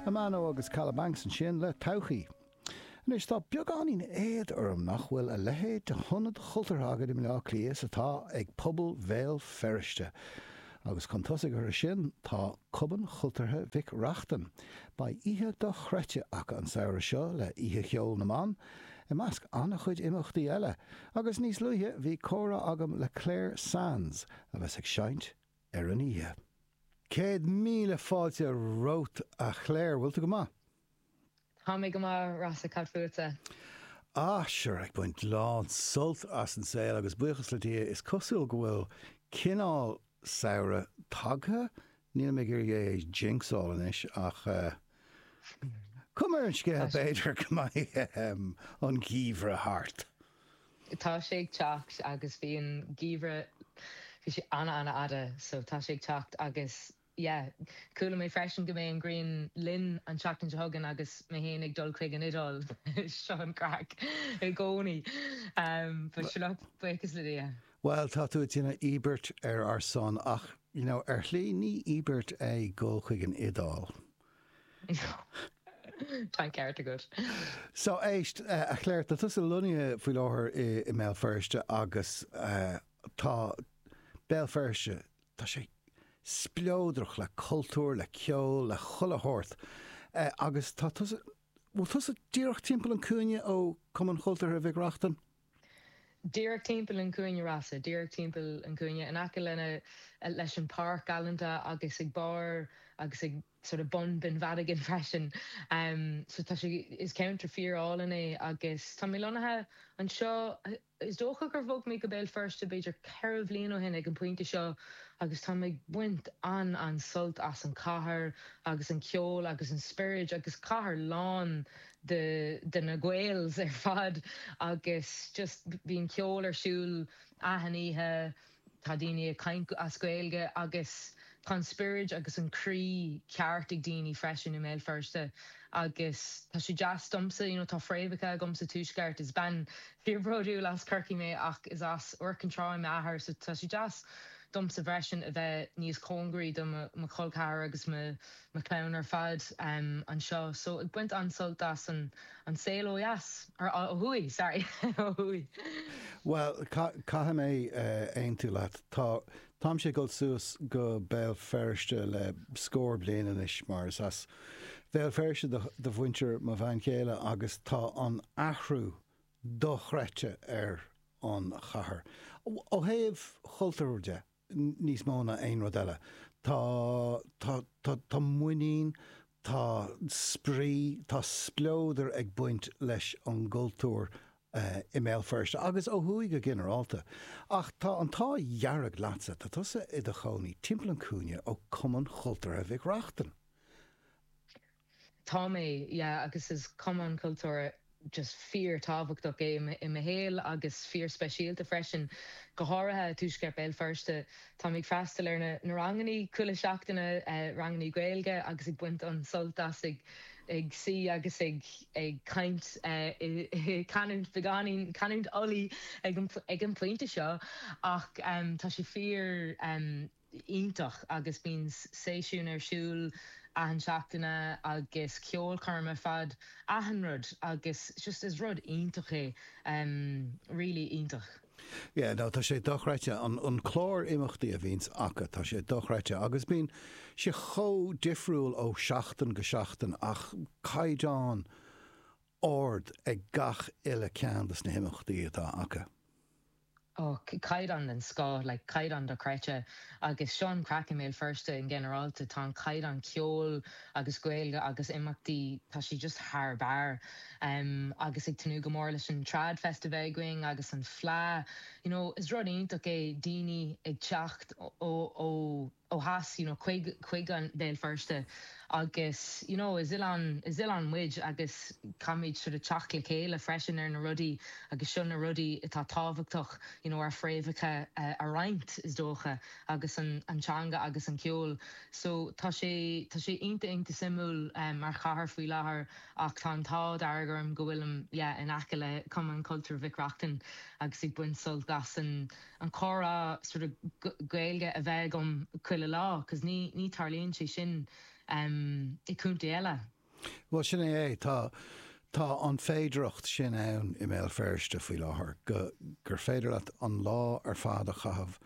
Amano agus Kalabanx ansin le todhchaí. Anois, tá beagáinín éad orm nach bhfuil a leithéid de hionad chultúrtha againn i mBleá Cliath is atá ag pobal Bhéal Feirste. Agus chun tosaigh orthu sin, tá Cumann Chultúrtha Mhic Reachtain. Beidh oíche dochreidte acu an samhradh seo le Oíche Cheoil na mBan, i measc an-chuid imeachtaí eile. Agus níos luaithe, bhí comhrá agam le Clare Sands, a bheas ag seinnt. ar an oíche. Céad míle fáilte romhat a Chlare, bhfuil tú go maith? Tá mé go maith Rossa, cad fútsa? Ah, sure, ag baint lán sult as an saol agus buíochas le Dia is cosúil go bhfuil cineál samhradh tagtha, nílim ag iarraidh é a jinxáil anois ach cuma ar an scéal b'fhéidir go mbeidh an geimhreadh thart. Tá sé ag teacht agus bhí an geimhreadh, bhí sé ana ana fhada so tá sé ag teacht agus yeah. Chuala mé freisin go mbeidh an ghrian linn an tseachtain seo chugainn agus mé féin ag dul chuig an Iodáil, seo an craic i gcónaí but sure look, buíochas le Dia. Bhuel tá tú ag déanamh íobairt ar ár son ach you know ar shlí ní íobairt é ag dul chuig an Iodáil. Tá an ceart agat. So, éist, a Chlare, tá tusa lonnaithe faoi láthair i mBéal Feirste agus tá Béal Feirste, tá sé spleodrach le cultúr, le ceol, le chuile shórt agus tá tusa, bhfuil tusa díreach timpeall an cúinne ó Cumann Chultúrtha Mhic Reachtain? Díreach timpeall an chúinne Rossa, díreach timpeall an chúinne, in aice lena, leis an páirc galanta agus ag barr agus ag sort of bun Binn Mhadigan freisin. So tá sé, is ceantar fíor álainn é agus tá mé lonnaithe anseo, is dócha gur bhog mé go Béal Feirste b'fhéidir ceithre bhliain ó shin ag an pointe seo agus táim ag baint an, an sult as an cathair agus an ceol agus an spioraid agus cathair lán de de na Gaels ar fad agus just bíonn ceol ar siúl achan oíche, tá daoine ag caint as Gaeilge agus tá an spioraid agus an croí ceart ag daoine freisin i mBéal Feirste agus tá sé deas domsa, you know tá fréamhacha agam sa tuaisceart, is bean fíor bródúil as Corcaigh mé ach is as Iúr Cinn Trá m'athair so tá sé deas domsa freisin a bheith níos cóngaraí do mo col ceathar agus mo mo chlann ar fad anseo so ag baint an-sult as an saol ó dheas, or ó thuaidh, sorry, ó thuaidh. Bhuel, caithfidh mé aontú leat. Tá, táimse ag dul suas go Béal Feirste le scór bliain anois mar is as Béal Feirste do, do mhuintir mo bhean chéile agus tá an athrú dochreidte ar an chathair, ó thaobh chultúir de. níos mó ná aon rud eile. Tá, tá, tá, tá muinín, tá spraoi, tá spleodar ag baint leis an gcultúr i mBéal Feirste agus ó thuaidh go ginearálta. Ach tá an t-ádh dhearg leatsa, tá tusa i do chónaí timpeall an cúinne ó Cumann Chultúrtha Mhic Reachtain. Tá mé, yeah, agus is cumann cultúrtha just fíor-tábhachtach é i mo shaol agus fíor-speisialta freisin, go háirithe tuaisceart Béal Feirste. Táim ag freastal ar na rangannaí chuile seachtaine, rangannaí Gaeilge, agus ag baint an-sult as a, ag suí agus ag ag caint canúint beagáinín, canúint Ulaidh ag an pointe seo, ach tá sé fíor. iontach agus bíonn seisiúin ar siúl achan seachtaine agus ceolchoirm ar fad achan rud agus just is rud iontach é really iontach. Yeah no tá sé dochreidte an an clár imeachtaí a bhíonns acu tá sé dochreidte agus bíonn sé chomh difriúil ó seachtain go seachtain ach caighdeán ard ag gach uile ceann de na himeachtaí atá acu. Och, caighdeán den scoth, like caighdeán dochreidte. Agus seo an craic i mBéal Feirste in generáilta, tá an caighdeán ceoil agus Gaeilge agus imeachtaí, tá sé just thar barr. Agus ag tnúth go mór leis an Trad Festival againn agus an Fleadh. You know, is rud iontach é daoine ag teacht ó. ó theas you know chuig chuig an Béal Feirste agus you know is oileán is oileán muid agus caithfimid sort of teacht le chéile freisin ar na rudaí agus seo na rudaí atá tábhachtach you know ár fréamhacha a roinnt is dócha agus an an teanga agus an ceol so tá sé tá sé iontach iontach suimiúil mar chathair faoi láthair ach tá an t-ádh dearg orm go bhfuilim yeah in aice le Cumann Cultúir Mhic Reachtain agus ag baint sult as an an comhrá sort of Gaeilge a bheith agam chuile lá cos ní ní tarlaíonn sé sin em i gcontae eile. Bhuel sin é é, tá tá an féidireacht sin ann i mBéal Feirste faoi láthair go gur féidir leat an lá ar fad a chaitheamh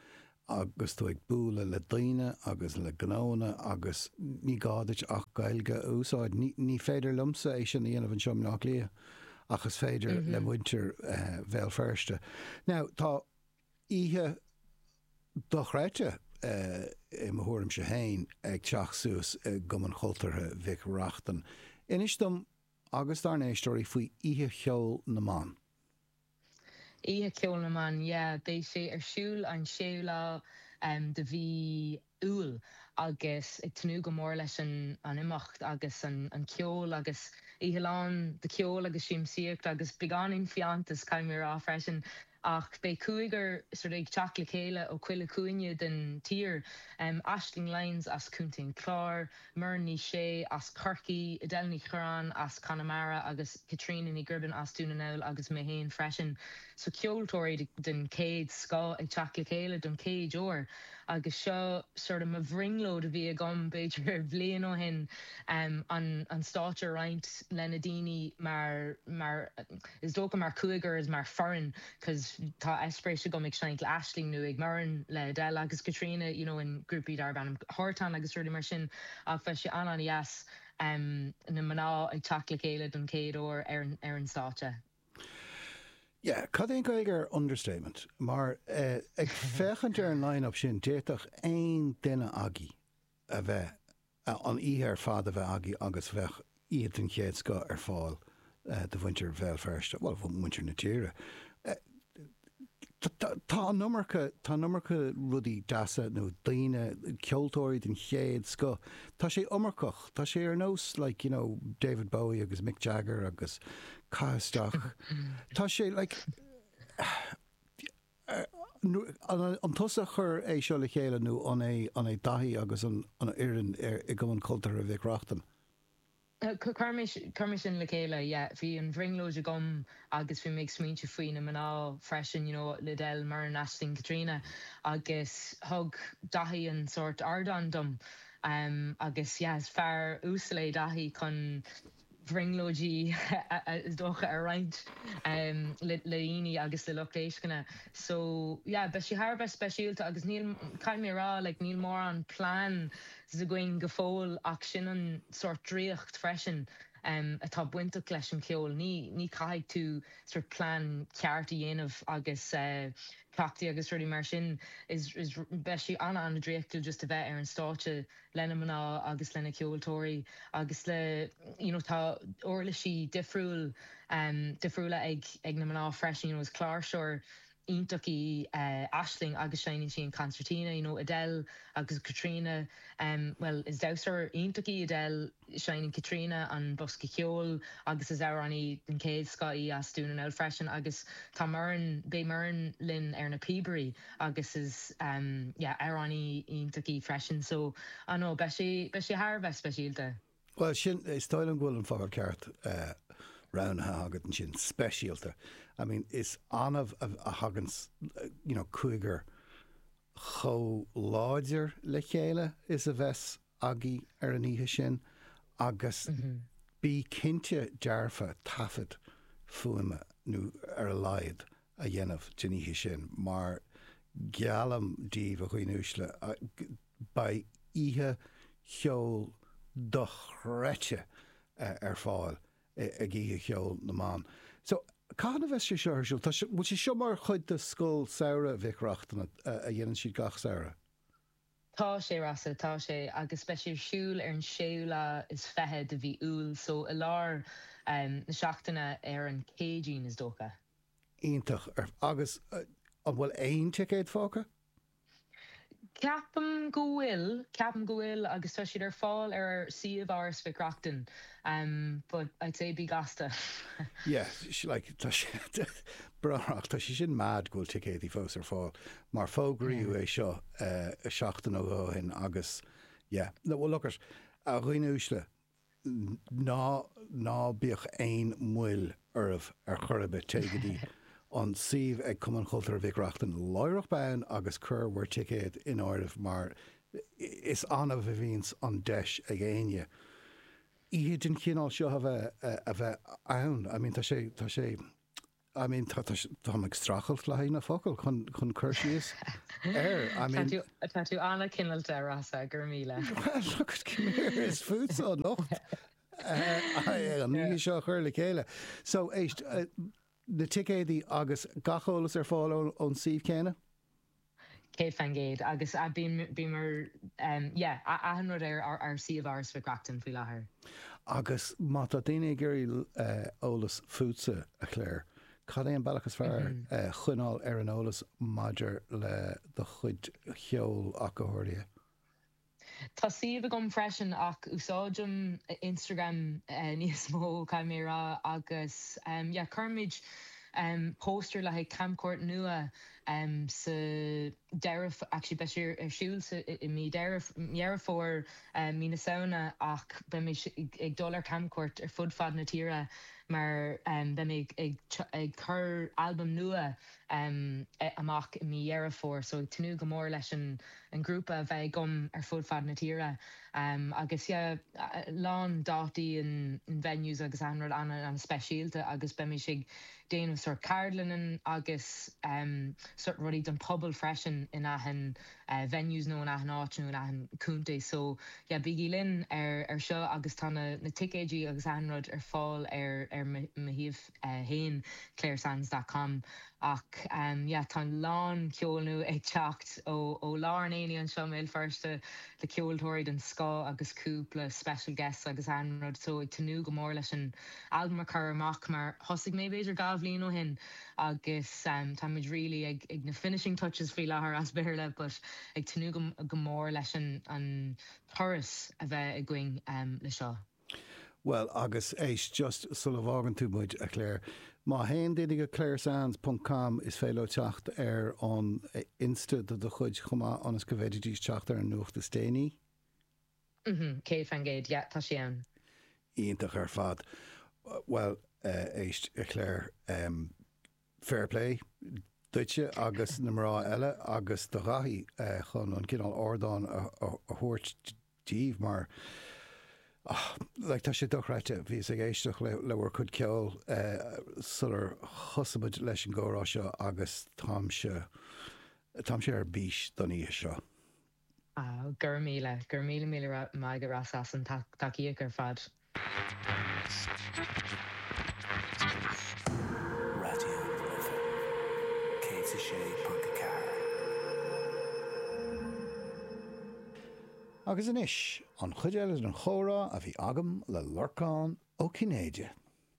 agus tú ag bualadh le daoine agus le gnóanna agus ní gá duit ach Gaeilge a úsáid. Ní ní féidir liomsa é sin a dhéanamh anseo i mBleá Cliath. ach is féidir le muintir Bhéal Feirste. Now, tá oíche dochreidte, i mo thuairimse féin, ag teacht suas i gCumann Chultúrtha Mhic Reachtain. Inis dom agus dár n-éisteoirí faoi Oíche Cheoil na mBan. Oíche Cheoil na mBan, yeah. Beidh sé ar siúl an séú lá de mhí Iúil agus ag tnúth go mór leis an imeacht agus an ceol agus oíche lán de cheol agus siamsaíocht agus beagáinín fiántas, caithfidh mé a rá freisin. Ach beidh cúigear sort of ag teacht le chéile ó chuile chúinne den tír, Aisling Lyons as Contae an Chláir, Muireann Ní Shé as Corcaigh, Edel Ní Chuireáin as Conamara agus Caitríona Ní Ghribin as Dún na nGall agus mé féin freisin. So ceoltóirí den chéad scoth ag teacht le chéile don chéad uair agus seo sort of mo bhrionglóid a bhí agam b'fhéidir bhliain ó shin an stáitse a roinnt le na daoine mar is dócha mar chúigear 's mar foireann. cos tá eispéiris agam ag seinnt le Aisling nó Muireann le Edel agus Caitríona you know in grúpaí darb ainm Hartán agus rudaí mar sin ach beidh sé an-an-dheas em na mná ag teacht le chéile don chéad uair ar an stáitse. Yeah, cad é an Gaeilge ar understatement? Mar eh ag féachaint ar an line-up sin d'fhéadfadh aon duine agaibh. a bheith, an oíche ar fad a bheith agaibh agus bheadh oíche den chéad scoth ar fáil do mhuintir Bhéal Feirste, bhuel, muintir na tíre. Tá an iomarca, tá an iomarca rudaí deasa nó daoine, ceoltóirí den chéad scoth, tá sé iomarcach, tá sé ar nós like, you know, David Bowie agus Mick Jagger agus caith isteach, tá sé like, An tusa a chuir é seo le chéile nó an é Daithí agus an fhoireann i gCumann Cultúrtha Mhic Reachtain? Chuir mise le chéile, yeah. Bhí an bhrionglóid agam agus bhí mé ag smaoineamh faoi na mná freisin, you know, le Edel, Muireann, Aisling, Caitríona agus thug Daithí an sórt ardán dom agus yeah, is fear uasal é Daithí chun. bhrionglóidí is dócha a roinnt le daoine agus le lucht éisteachta so yeah beidh sé thar a bheith speisialta agus níl, caithfidh mé a rá like níl mórán pleans againn go fóill ach sin an sórt draíocht freisin atá bainteach leis an cheol, ní, ní caithfidh tú sort plean ceart a dhéanamh agus cleachtaí agus rudaí mar sin is, is, beidh sé ana, ana draíochtúil just a bheith ar an stáitse. lena mná agus lena ceoltóirí agus le you know tá uirlisí difriúil em difriúla ag ag na mná freisin you know is cláirseoir iontach í eh Aisling agus seinneann sí an concertina you know Edel agus Caitríona em bhuel is damhsóir iontach í Edel seinneann Caitríona an bosca ceoil agus is amhránaí den chéad scoth í as Dún na nGall freisin agus tá Muireann beidh Muireann linn ar na píobairí agus is yeah amhránaí iontach í freisin so I know beidh sé beidh sé thar a bheith speisialta. Bhuel sin, is dóigh liom go bhfuil an focal ceart roghnaithe agat ansin, speisialta. I mean is annamh a thagann you know cúigear chomh láidir le chéile is a bheas aghaidh ar an oíche sin agus bí cinnte dearfa taifead fuaime ar a laghad a dhéanamh den oíche sin mar geallaim díbh a dhaoine uaisle beidh oíche cheoil dochreidte ar fáil ag Oíche Cheoil na mBan. So, cathain a bheas sé seo ar siúl? Tá sé, bhfuil sé seo mar chuid de Scoil Samhraidh Mhic Reachtain a dhéanann siad gach samhradh? Tá sé, a Rossa, tá sé, agus beidh sé ar siúl ar an séú lá is fiche de mhí Iúil, so i lár na seachtaine ar an gCéadaoin, is dócha. Iontach. Agus an bhfuil aon ticéad fágtha? Ceapaim go bhfuil, ceapaim go bhfuil agus tá siad ar fáil ar suíomh Áras Mhic Reachtain but I'd say bí gasta. Yeah, like tá sé breáthrach, tá sé sin mad go bhfuil ticéadaí fós ar fáil. mar fógraíodh é seo seachtain nó dhó ó shin agus yeah, no, well look it, a dhaoine uaisle, ná, ná bíodh aon mhoill oraibh ar chor ar bith, téigh go dtí an suíomh ag Cumann Cultúrtha Mhic Reachtain láithreach bonn agus cuir bhur ticéad in áirithe mar is annamh a bhíonns an deis ag éinne oíche den chineál seo a bheith, a bheith ann, I mean tá sé, tá sé. I mean, tá, tá, táim ag strachailt le haghaidh na focail chun, chun cur síos air. I mean, tú, tá tú an-chineálta, a Rossa, go raibh míle. Well, look at come here, is fútsa anocht. An oíche seo a chur le chéile. So, éist, uh, na ticéadaí agus gach eolas ar fáil ón, ón suíomh céanna? 100 fan gcéad agus bíomar yeah achan rud ar ár suíomh Áras Mhic Reachtain faoi láthair. Agus má tá daoine ag iarraidh eolas fútsa, a Clare, cad é an bealach is fearr coinneáil ar an eolas maidir le do chuid ceoil ach go háirithe? Tá suíomh agam freisin ach úsáidim Instagram níos mó caithfidh mé a rá agus yeah cuirimid póstaeir le haghaidh camchuairt nua sa deireadh actually beidh sé ar siúl sa i mí De- Deireadh Fómhair mí na Samhna ach beidh mé ag dul ar camchuairt ar fud fad na tíre mar beidh mé ag ag ag cur albam nua amach i mí Dheireadh Fómhair so ag tnúth go mór leis an an grúpa a bheith agam ar fud fad na tíre agus yeah lán dátaí and venues agus achan rud ana ana speisialta agus beimís ag déanamh sort ceardlannan agus sort rudaí don pobal freisin in achan venues nó in achan áit nó in achan contae so yeah bígí linn ar seo agus tá na ticéidí agus achan rud ar fáil ar mo shuíomh. féin, claresands dot com Ach yeah tá a lán ceol nua ag teacht ó ó lár an aonaigh anseo i mBéal Feirste le ceoltóirí den scoth agus cúpla special guests agus achan rud so ag tnúth go mór leis an albam a chur amach mar thosaigh mé b'fhéidir dhá bhliain ó shin agus táimid really ag ag na finishing touches faoi láthair as Béarla but ag tnúth go go mór leis an an turas a bheith againn le seo. Bhuel, agus éist, just sula bhfágann tú muid, a Clare, má théann daoine go claresands ponc com is féidir leo teacht ar an Insta de do chuid chomh maith ionas go bhféididís teacht ar an nuacht is déanaí. Mm-hmm. Céad faoin gcéad. Yeah, tá sé ann. Iontach ar fad. Bhuel, eh, éist, a Clare, em, Fair play duitse agus na mná eile agus do Dhaithí chun an cineál ardáin a thabhairt díbh mar like tá sé dochreidte, bhíos ag éisteacht le bhur cuid ceoil sular thosaigh muid leis an gcomhrá seo agus táimse, táimse ar bís don oíche seo. Go raibh míle, go raibh míle míle maith agaibh as an tacaíocht ar fad. Raidió na Life 106.4. Agus anois, an chuid eile den chomhrá a bhí agam le Lorcán Ó Cinnéide.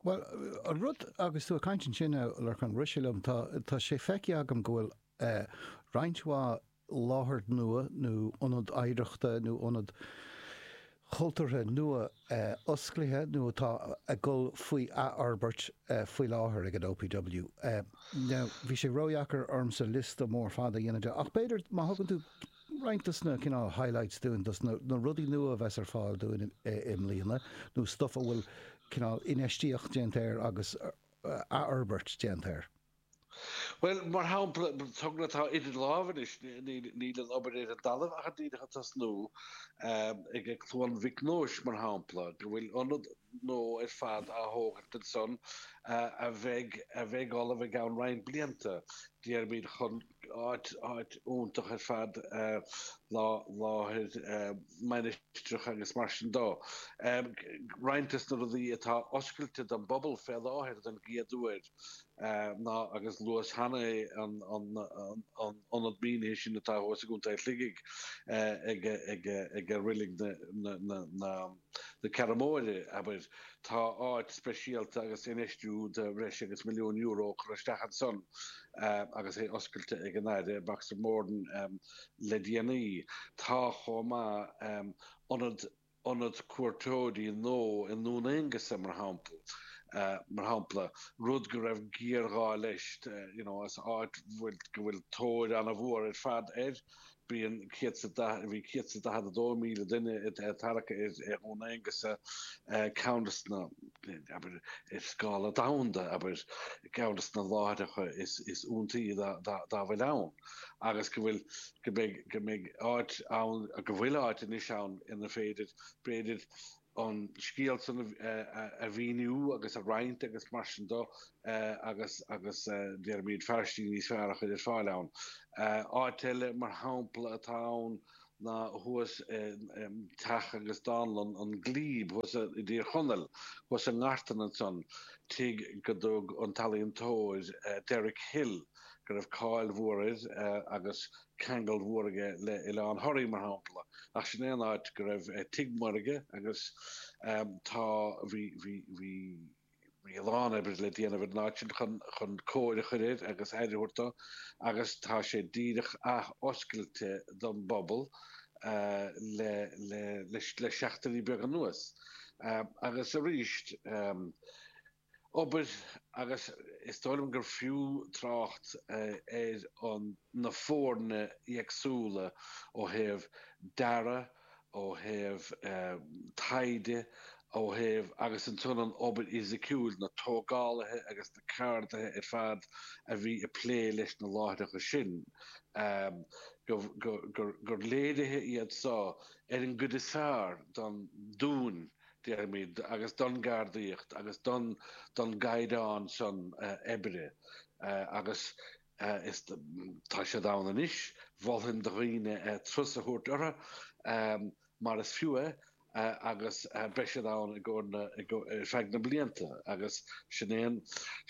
Bhuel, an rud agus tú ag caint ansin, a Lorcán, rith sé liom, tá sé feicthe agam go bhfuil roinnt mhaith láthair nua nó ionad oidhreachta nó ionad cultúrtha nua osclaithe nó atá ag dul faoi athfhorbairt faoi láthair ag an OPW. Now, bhí sé ródheacair ormsa liosta mór fada a dhéanamh de ach b'fhéidir má thugann tú roinnt des na cineál highlights dúinn, des na rudaí nua a bheas ar fáil dúinn i mbliana nó stuff a bhfuil cineál infheistíocht déanta air agus athfhorbairt déanta air. Bhuel, mar shampla, togra atá idir lámha anois, níl an obair ar an dtalamh ach díreach ag tosnú, ag Cluain Mhic Nóis mar shampla, go bhfuil ionad nua ar fad á thógaint ansan a bheidh ullamh i gceann roinnt blianta, déarfaimid, chun áit iontach ar fad láthair mainistreach agus mar sin de. Roinnt des na rudaí atá oscailte don bpobal fé láthair don gcéad uair, ná agus luas cheana é an ionad mínithe sin atá thuas i gContae Shligigh ag reilig na Ceathrún Móire, abair. Tá áit speisialta agus infheistiú de bhreis agus milliún euro curtha isteach ansan agus é oscailte ag an Aire Boxer Moran le déanaí. Tá chomh maith ionad ionad cuairteoirí nó i nDún Aonghasa mar shampla, mar shampla, rud go raibh géarghá leis, you know, as áit bhfuil, go bhfuil tóir an-mhór ar fad air, bíonn céad sa, bhí céad sa daichead a dó míle duine ag tarrac ar Dhún Aonghasa, ceann des na, abair, ar scála domhanda, abair, ceann des na láithreacha is iontaí dá bhfuil ann. agus go bhfuil, go mbeidh, go mbeidh áit ann, go bhfuil áit anois ann ina féidir, b'fhéidir, an scéal san a mhíniú agus a roinnt agus mar sin do agus, agus deirimid fearaistí níos fearr a chuir ar fáil ann. Áit eile mar shampla atá ann ná thuas i Teach agus Dánlann an Glebe thuas i dTír Chonaill, thuas i nGartan ansan, tigh go dtug an t-ealaíontóir Derek Hill, go raibh cáil mhór air agus ceangal mhór aige le Oileán Thoraí mar shampla ach sin é an áit go raibh tigh mór aige agus tá bhí bhí bhí bhí a lán oibre le déanamh ar an áit sin chun chun cóir a chuir air agus aire a thabhairt dó agus tá sé díreach ath-oscailte don bpobal le le le seachtainí beaga anuas agus arís obair agus is dóigh liom gur fiú trácht ar an na foirne éagsúla ó thaobh dearadh, ó thaobh taighde, ó thaobh agus ansan an obair fhisiciúil, na tógálaithe agus na ceardaithe ar fad a bhí ag plé leis na láithreacha sin, gur léirithe iad seo ar an gcuid is fearr don Dúin déarfaimid, agus don gceardaíocht agus don don gcaighdeán san oibre agus is tá siad ann anois. Mholfainn do dhaoine turas a thabhairt orthu mar is fiú é agus beidh siad ann i gcomhair na ar feadh na blianta agus sin é an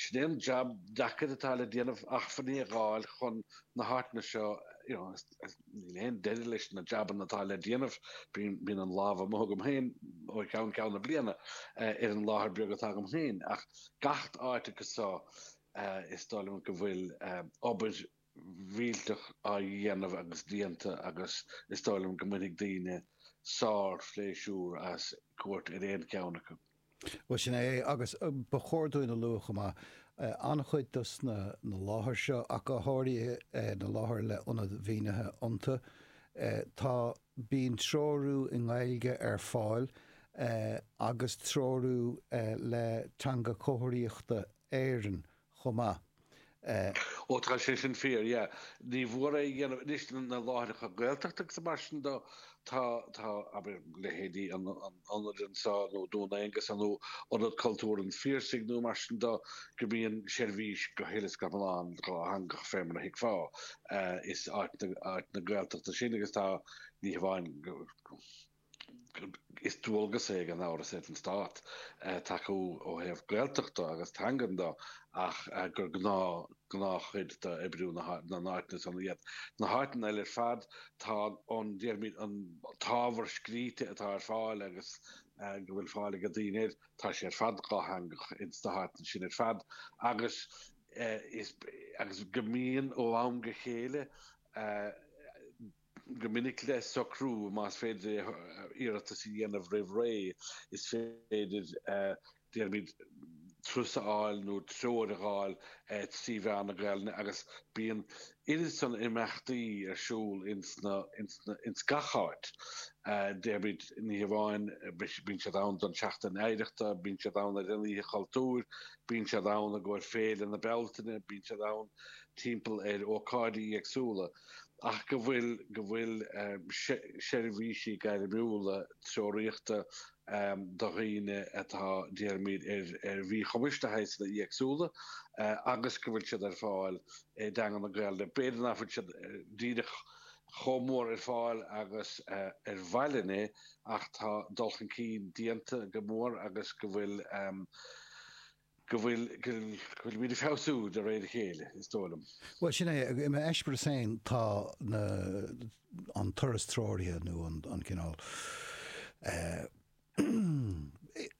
sin é an jab deacair atá le déanamh acmhainní a dh'fháil chun na háiteanna seo you know. Níl aon deireadh leis na jabanna atá le déanamh. Bíonn an lámh amuigh agam féin ó cheann ceann na bliana ar an láthair beag atá agam féin ach gach áit acu so is dóigh liom go bhfuil obair mhillteach á dhéanamh agus déanta agus is dóigh liom go mbainfidh daoine sár-phléisiúr as cuairt ar aon cheann acu. Bhuel, sin é é. Agus ba chóir dúinn a lua chomh maith, an-chuid de na láithreacha seo, ach go háirithe na láthair le ionad mínithe iontu, tá, bíonn treorú i nGaeilge ar fáil agus treorú le Teanga Chomharthaíochta Éireann chomh maith. Ó tá sé san fíor, yeah. Ní nach ionadh, anois na láithreacha Gaeltachta agus mar sin de, tá, tá, abair leithéidí Ionad an Bhlascaoid nó Dún Aonghasa nó Ionad Cultúrtha an Phiarsaigh nó mar sin de go mbíonn seirbhís go huile is go hiomlán dhátheangach fé mar a thuigfeá. Is áiteanna Gaeltachta iad sin agus tá, ní hamháin go. Is dualgas é ag an áras, ag an Stát tacú ó thaobh Gaeltachta agus teangan de ach gur gnáth, gnáthchuid d'oibriú na n-áiteanna san iad. Na háiteanna eile ar fad, tá an, déarfaimid, an t-ábhar scrite atá ar fáil agus go bhfuil fáil ag daoine air, tá sé ar fad dhátheangach ins na háiteanna sin ar fad agus is, agus go mbíonn ó am go chéile, go minic le socrú más féidir iarratas a dhéanamh roimh ré. Is féidir, déarfaimid, turas a fháil nó treoir a dh'fháil trí mheán na Gaelainne agus bíonn oiread san imeachtaí ar siúl ins gach áit, déarfaimid, ní hamháin bíonn siad ann don tSeachtain Oidhreachta, bíonn siad ann ar an Oíche Chultúir, bíonn siad ann i gcomhair Féile na Bealtaine, bíonn siad ann timpeall ar ócáidí éagsúla. ach go bhfuil go bhfuil seirbhísí gairmiúla treoraíochta do dhaoine atá, déarfaimid, ar mhíchumais de shaghsanna éagsúla agus go bhfuil siad ar fáil i dteanga na Gaeilge. B'fhéidir nach bhfuil siad díreach chomh mór ar fáil agus ba mhaith linn é ach tá dul chun cinn déanta go mór agus go bhfuil, go bhfuil muid ag feabhsú de réir a chéile, is dóigh liom. Bhuel, sin é. I m'eispéireas féin, tá an turas treoraithe nó an cineál, é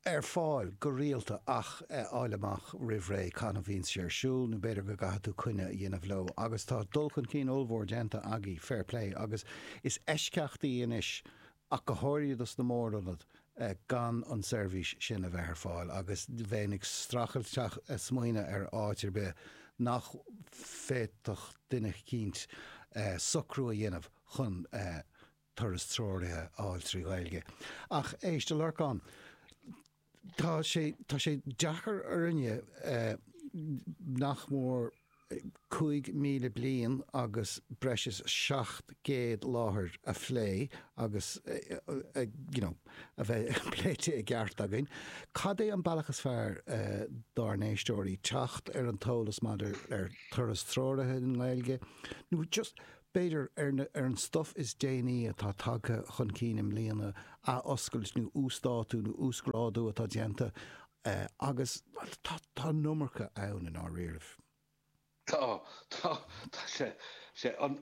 ar fáil go rialta ach a fháil amach roimh ré cathain a bhíonn sé ar siúl nó b'fhéidir go gcaithfidh tú coinne a dhéanamh leo. Agus tá dul chun cinn ollmhór déanta agaibh, fair play, agus is eisceachtaí anois ach go háirithe sna mór-ionaid, gan an tseirbhís sin a bheith ar fáil agus bheinn ag streachailt smaoineamh ar áit ar bith nach bhféadfadh duine eicínt socrú a dhéanamh chun turas treoraithe a fháil trí Ghaeilge. Ach éist, a Lorcáin. Tá sé, tá sé deacair orainne nach mór 5,000 bliain agus breis is 700 láthair a phlé agus you know a bheith pléite i gceart againn. Cad é an bealach is fearr dár n-éisteoirí teacht ar an t-eolas maidir le turas treoraithe i nGaeilge nó just B'fhéidir, ar an stuif is déanaí atá tagtha chun cinn i mbliana, athoscailt nó uasdátú nó uasghrádú atá déanta agus tá an iomarca ann i ndáiríre. Tá, tá, tá sé. Sé an,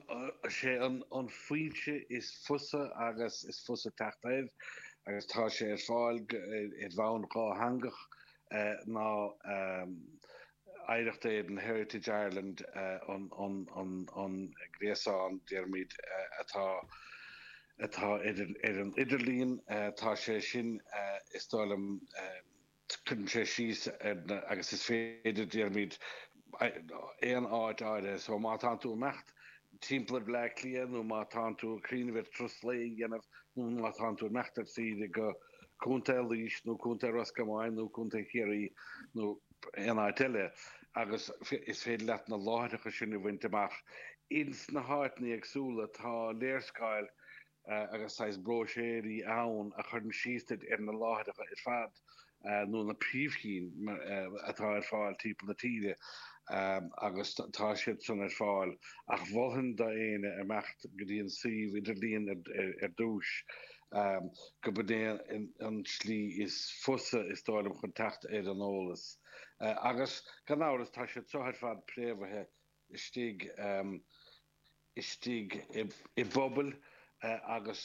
sé an an fhoinse is fusa agus is fusa teacht air agus tá sé ar fáil ar bhonn dhátheangach ná Oidhreacht Éireann, Heritage Ireland, an gréasán déarfaimid atá ar an idirlíon. Tá sé sin, is dóigh liom, cuireann sé síos ar na, agus is féidir déarfaimid aon áit áirithe. So má tánn tú ag imeacht timpeall ar Bhleá Cliath nó má tánn tú ag cuimhneamh ar turas lae a dhéanamh nó má tánn tú ag imeacht ar saoire go Contae Laois nó Contae Ros Comáin nó Contae Chiarraí nó aon áit eile agus is féidir leat na láithreacha sin a bhaint amach ins na háiteanna éagsúla. Tá léarscáil agus saghas bróiséirí ann a chuireann síos duit ar na láithreacha ar fad nó na príomhchinn atá ar fáil timpeall na tíre agus tá siad san ar fáil ach mholfainn d'éinne imeacht go dtí an suíomh idirlíon ar dtús. gurb shin é an tslí is fusa is dóigh liom chun teacht ar an eolas. Agus gan amhras tá siad seo ar fad préamhaithe istigh istigh i bpobail agus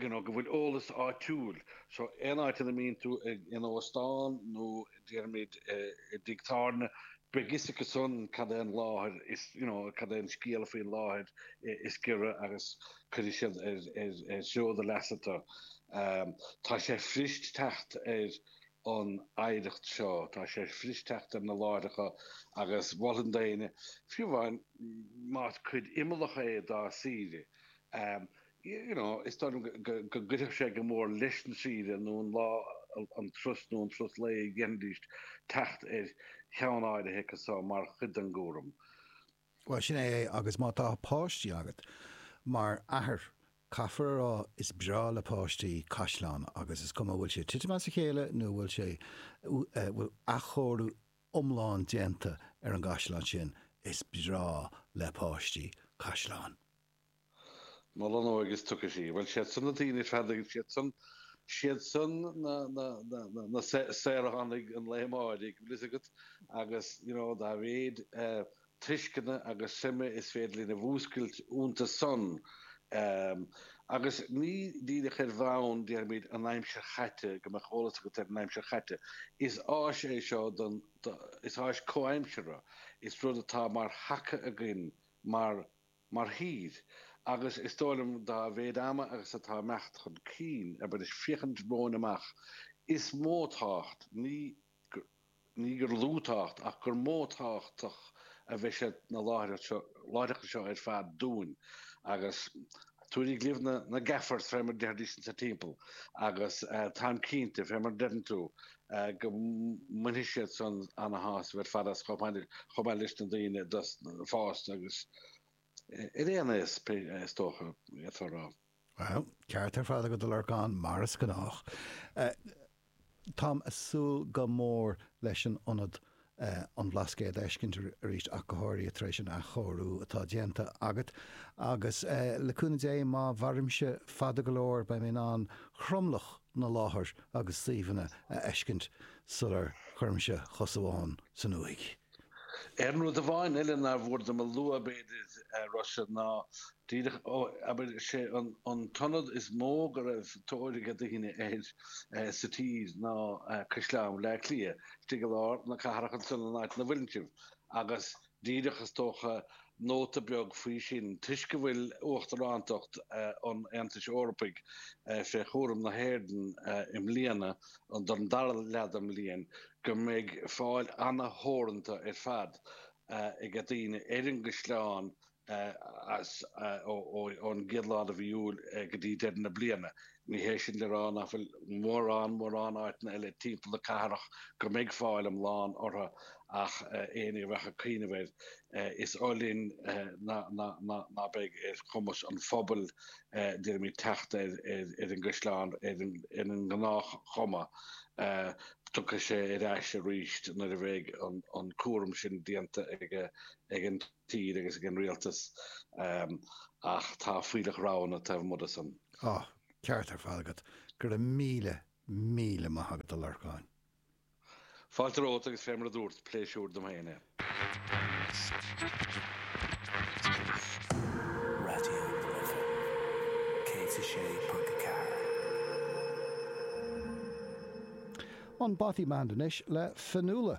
you know go bhfuil eolas áitiúil so aon áit ina mbíonn tú ag in óstán nó déarfaimid, i dtigh tábhairne, beidh 'fhios acu san cad é an láthair is, you know, cad é an scéala faoin láthair is giorra agus cuirfidh siad ar do leasa tu. Tá sé fuirist teacht ar an oidhreacht seo, tá sé fuirist teacht ar na láithreacha agus mholfainn d'éinne, fiú amháin más cuid imeallach é dá saoire, You know, is dóigh liom go gcuirfeadh sé go mór leis an saoire nó an lá an turas nó an turas lae a dhéanfaidís teacht ar cheann áirithe acu so mar chuid den gcúram. Bhuel, sin é é agus má tá páistí agat, mar athair, caithfear a rá is breá le páistí caisleán agus is cuma an bhfuil sé tite as a chéile nó an bhfuil sé, bhfuil athchóiriú iomlán déanta ar an gcaisleán sin, is breá le páistí caisleán. Mol an óige is tiocfaidh sí. Bhuel, siad san na daoine feasta, siad san, siad san na, na, na, na, na saoránaigh an lae amáirigh, bhfuil fhios agat, agus, you know, dá mhéid eh tuisceana agus suime is féidir linn a mhúscailt iontu san ehm, agus ní díreach ar bhonn, deirimis, an aimsir chaite, go mbeadh eolas agat ar an aimsir chaite, is áis é seo don, do, is áis comhaimseartha, is rud atá mar thaca againn mar. Mar thír, agus is dóigh liom dá mhéid ama agus atá ag imeacht chun cinn abair is féachaint romhainn amach, is mó tábhacht, ní, ní gur lú tábhacht, ach gur mó tábhachtach a bheidh sé na láithreacha seo ar fad dúinn agus táim ag cuimhneamh ar na, na Gaffers, fé mar a deir daoine anso timpeall, agus táim cinnte, fé mar a deireann tú, go mbainfidh siad san ana-shásamh ar fad as chomh maith leis na daoine fásta agus ar aon aos is dócha, d'fhéadfá a rá. Bhuel, ceart ar fad agat, a Lorcáin, mar is gnách. Táim ag súil go mór leis an ionad an Bhlascaoid a fheiscint arís ach go háirithe tar éis an athchóiriú atá déanta agat agus le cúnamh Dé má mhairimse fada go leor beidh mé in ann tromlach na láthair agus suíomhanna a fheiscint sular chuirimse chos amháin san uaigh. Aon rud amháin eile nár mhór dom a lua b'fhéidir, a Rossa, ná Díreach abair, sé an t-ionad is mó go raibh tóir ag daoine air sa tír ná Caisleán Bhaile Átha Cliath, istigh i lár na cathrach ansan san áit ina bhfuileann sibh agus díreach is dócha nóta beag faoi sin toisc go bhfuil uachtarántacht an Aontais Eorpaigh fé chúram na hÉireann i mbliana don dara leath den mbliain go mbeidh fáil ana-theoranta ar fad ag daoine ar an gCaisleán as ón gcéad lá de mhí Iúil go dtí deireadh na bliana. Ní hé sin le rá nach bhfuil mórán mórán áiteanna eile timpeall na cathrach go mbeidh fáil iomlán orthu ach éinne a bheadh ag cuimhneamh air, is oth linn ná beidh ar chumas an phobail deirimis teacht ar an gCaisleán ar an ngnáthchuma. Tiocfaidh sé ar ais arís nuair a bheidh an cúram sin déanta ag an. tír agus ag an rialtas ach tá fuílleach roghanna taobh amuigh de san. Tá. Ceart ar fad agat. Go raibh míle, míle maith agat a Lorcáin. Fáilte romhat agus fé mar a dúrt, pléisiúr dom féin é. Raidió na Life 106.4. An Bothy Band anois le Fionnuala.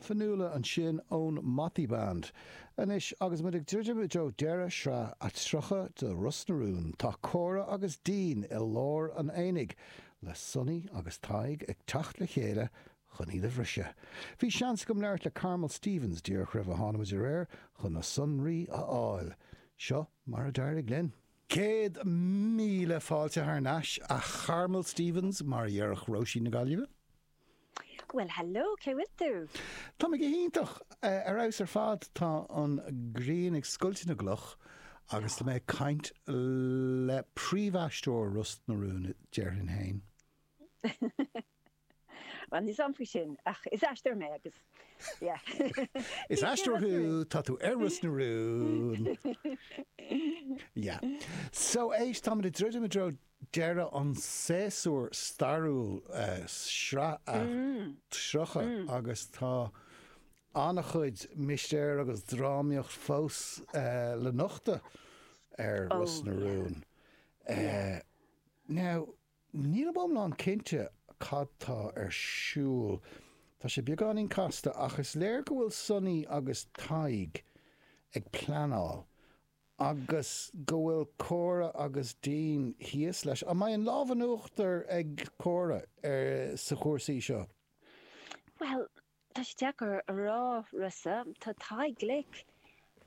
Fionnuala ansin ón Motty Band. Anois agus muid ag druidim i dtreo deireadh shraith a 30 de Ros na Rún, tá Córa agus Dean i lár an aonaigh, le Sonny agus Tadhg ag teacht le chéile chun iad a bhriseadh. Bhí seans agam labhairt le Carmel Stephens díreach roimh a tháinig muid aréir chun na sonraí a fháil. Seo mar a d'éirigh linn. Céad míle fáilte thar n-ais, a Charmel Stephens, mar a dhéarfadh Róisín na Gaillimhe. Bhuel hello, cén chaoi a bhfuil tú? Tá mé go hiontach! Ar fheabhas ar fad! Tá an ghrian ag scoilteadh na gcloch agus tá mé ag caint le príomhaisteoir Ros na Rún, déarfainn féin. Bhuel, ní shamhlóinn sin, ach is aisteoir mé agus yeah. Is aisteoir thú, tá tú ar Ros na Rún! Yeah. So, éist, táimid ag druidim i dtreo deireadh an tséasúir stairiúil Sraith a 30 agus tá an-chuid mistéir agus drámaíocht fós le nochtadh ar Ros na Rún. Now, nílim iomlán cinnte cad tá ar siúl. Tá sé beagáinín casta ach is léir go bhfuil Sonny agus Tadhg ag pleanáil agus go bhfuil Cora agus Dean thíos leis. An mbeidh an lámh in uachtar ag Cora ar na cúrsaí seo? Bhuel, tá sé deacair a rá, Rossa. Tá Tadhg glic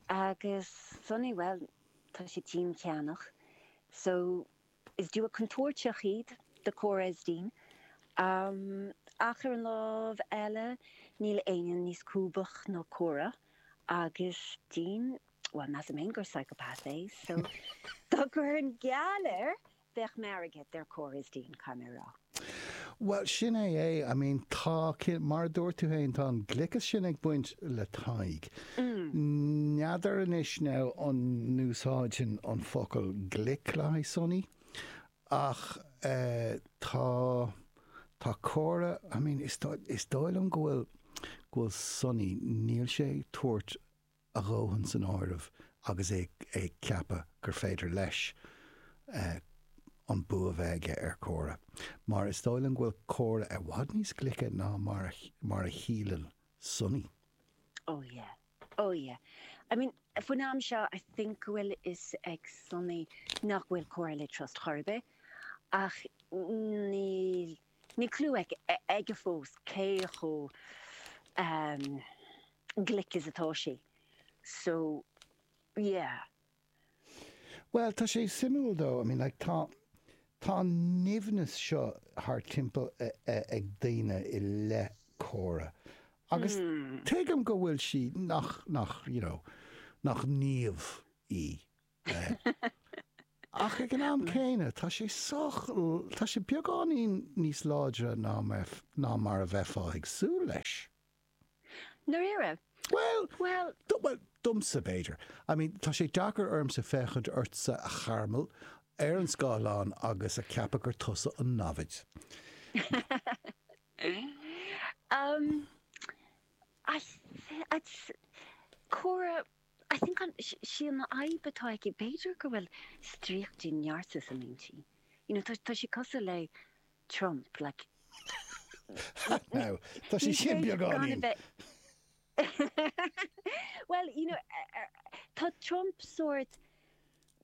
agus Sonny, bhuel, tá sé ceanndána. So, Is duo contúirteach iad do Cora is Dean ach ar an lámh eile níl éinne níos lúbaí ná Cora agus Dean, bhuel measaim fhéin gur psychopath é so dá gcuirfinn geall air bheadh m'airgead ar Cora is Dean, caithfidh mé a rá. Bhuel, sin é. I mean, tá, mar a dúirt tú féin, tá an gliceas sin ag baint le Tadhg. N'fheadar anois now an n-úsáidfinn an focal glic le haghaidh Sonny ach eh tá, tá Cora, I mean, is dóigh, is dóigh liom go bhfuil, go bhfuil Sonny, níl sé ag tabhairt a dhóthain san áireamh agus é ag ceapadh gur féidir leis an bua a bheith aige ar Cora mar is dóigh liom go bhfuil Cora i bhfad níos glice ná mar a shíleann Sonny. Oh yeah, oh yeah. I mean faoin am seo I think go bhfuil fhios ag Sonny nach bhfuil Cora le trust chor ar bith ach níl, Níl clue aige fós cé chomh glic is atá sé so yeah. Bhuel, tá sé suimiúil though, I mean like tá, tá an nimhneas seo thar timpeall ag daoine i leith Cora agus tuigim go bhfuil sí, nach, nach, you know, nach naomh í. Ach ag an am céanna, tá sé sách, tá sé beagáinín níos láidre ná mar a bheifeá ag súil leis. ndáiríre? Bhuel, Bhuel. domsa, b'fhéidir. I mean, tá sé deacair ormsa féachaint ortsa, a Charmel, ar an scáileán agus a cheapadh gur tusa an namhaid. Ahm, ach Cora, I think an, sí an fhadhb atá aici, b'fhéidir go bhfuil stríoc de narcissism inti. You know, tá, tá sí cosúil le Trump, like, Now, tá sí sin beagáinín. Bhuel, you know, eh, eh, tá Trump sórt,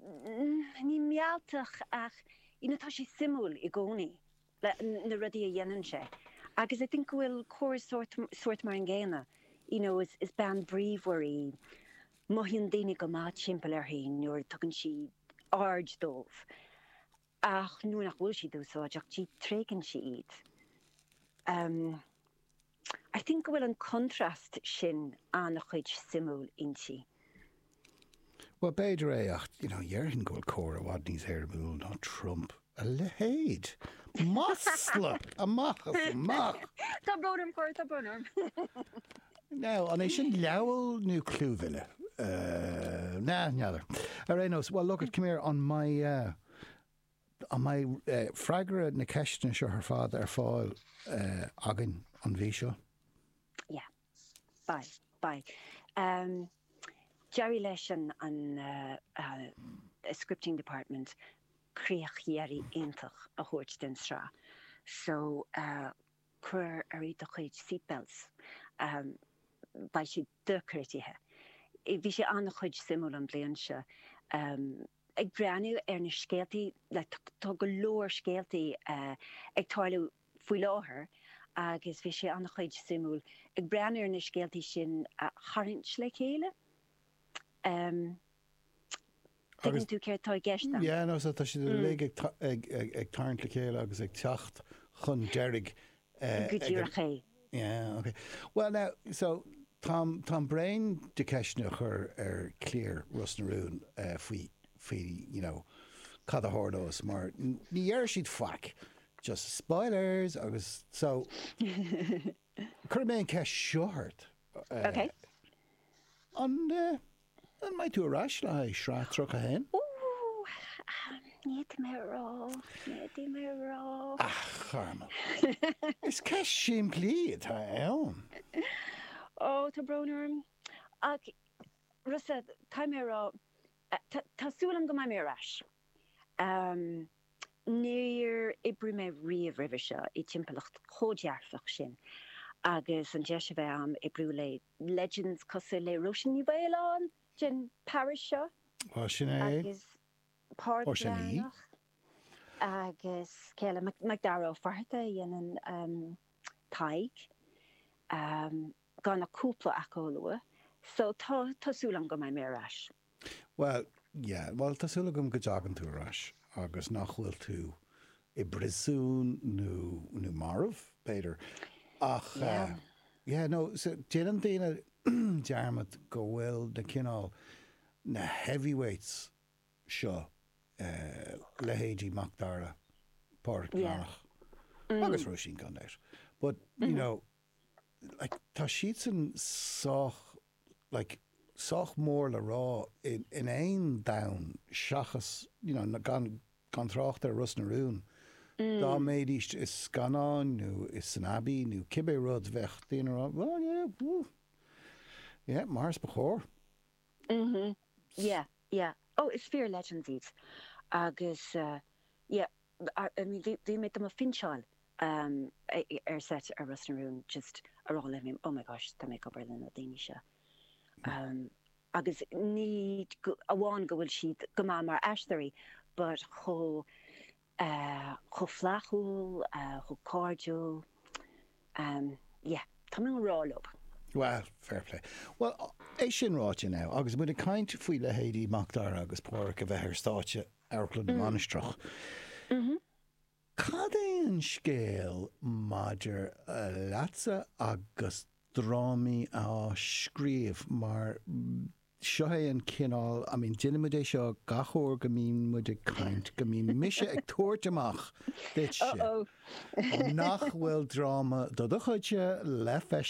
mm, ní mealltach ach, you know, tá sé suimiúil i gcónaí. na rudaí a dhéanann sé agus I think go bhfuil Cora sórt, sórt mar an gcéanna you know is, is bean bríomhar í, mothaíonn daoine go maith timpeall uirthi nuair a tugann sí aird dóibh ach nuair nach bhfuil siad úsáideach di, tréigeann sí iad. Um. I think go bhfuil an contrast sin an-chuid suimiúil inti. Bhuel, b'fhéidir é ach, you know, dhéarfainn go bhfuil Cora i bhfad níos éirimiúla ná Trump. A leithéid! Masla! Amach is amach! Tá brón orm, Cora, tá brón orm. Now, an é sin libel nó clúmhilleadh? Nah, n'fheadar. Ar aon nós, well, look it, come here, an mbeidh eh, An mbeidh freagra na ceisteanna seo ar fad ar fáil againn an mhí seo? Yeah. Beidh. Beidh. D'éirigh leis an scripting department críoch dheiridh iontach a thabhairt don tsraith so cuir ort do chuid seatbelts. Beidh sé dochreidte. Bhí sé an-chuid suimiúil an bliain seo. ag breathnú ar na scéaltaí like tá go leor scéaltaí ag tarlú faoi láthair agus bhí sé ana chuid suimiúil ag breathnú ar na scéaltaí sin a tharraingt le chéile em tuigeann tú céard tá i gceist agam? Yeah no so tá siad uilig ag ag ag tarraingt le chéile agus ag teacht chun deiridh go díreach é. Yeah, ok. Bhuel now, so, táim, táim bréan de cheisteanna a chur ar chliar Ros na Rún faoi, faoi, you know, cad a tharlós mar ní déarfaidh siad faic, just spoilers agus so, cuirfidh mé an ceist seo ort. Ok. An, An mbeidh tú ar ais le haghaidh sraith 31? Ní féidir liom a rá, ní féidir liom a rá. Ach, Carmel, is ceist simplí atá ann. Ó, tá brón orm. Ach, Rossa, caithfidh mé a rá, tá súil agam go mbeidh mé ar ais. Níor oibrigh mé riamh roimhe seo i dtimpeallacht chomh dearfach sin agus an deis a bheith agam oibriú le legends cosúil le Róisín Ní Mhaoláin den parish seo Bhuel, sin é. Agus Páraic Ó, sin í. Breathnach agus an céile MacDara Ó Fatharta a dhéanann Tadhg, gan ach cúpla acu a lua. So tá súil agam go mbeidh mé ar ais. Bhuel, yeah. Bhuel, tá súil agam go dtagann tú ar ais agus nach bhfuil tú i bpríosún nó, nó marbh, b'fhéidir. Ach Yeah. yeah, no, so déanann daoine dearmad go bhfuil na cineál, na heavyweights seo, leithéidí Mac Dara, Páraic Breathnach, agus Róisín gan dabht, but, you know, like tá siadsan sách like sách mór le rá in aon domhan seachas you know gan gan trácht ar Ros na Rún, dá mbeidís i scannán nó insan Abbey nó cibé rud bheadh daoine ag rá well yeah woo yeah mar ba chóir. mhm yeah yeah oh is fíor-legends iad agus yeah. bhí mé do mo phinseáil ar seit ar Ros na Rún just ag rá like oh my gosh tá mé ag obair le na daoine seo agus ní amháin go bhfuil siad go maith mar aisteoirí but chomh chomh flaithiúil chomh cairdiúil yeah tá mé i ngrá leob. Bhuel fair play. Bhuel é sin ráite now agus muid ag caint faoi leithéidí Macdara agus Páraic a bheith ar stáitse Amharclann na Mainistreach. Cad é an scéal maidir leatsa agus drámaí a scríobh mar seo é an cineál, I mean déanann muid é seo gach uair go mbíonn muid ag caint, go mbíonn mise ag tabhairt amach duitse, nach bhfuil dráma de do chuidse le feiscint.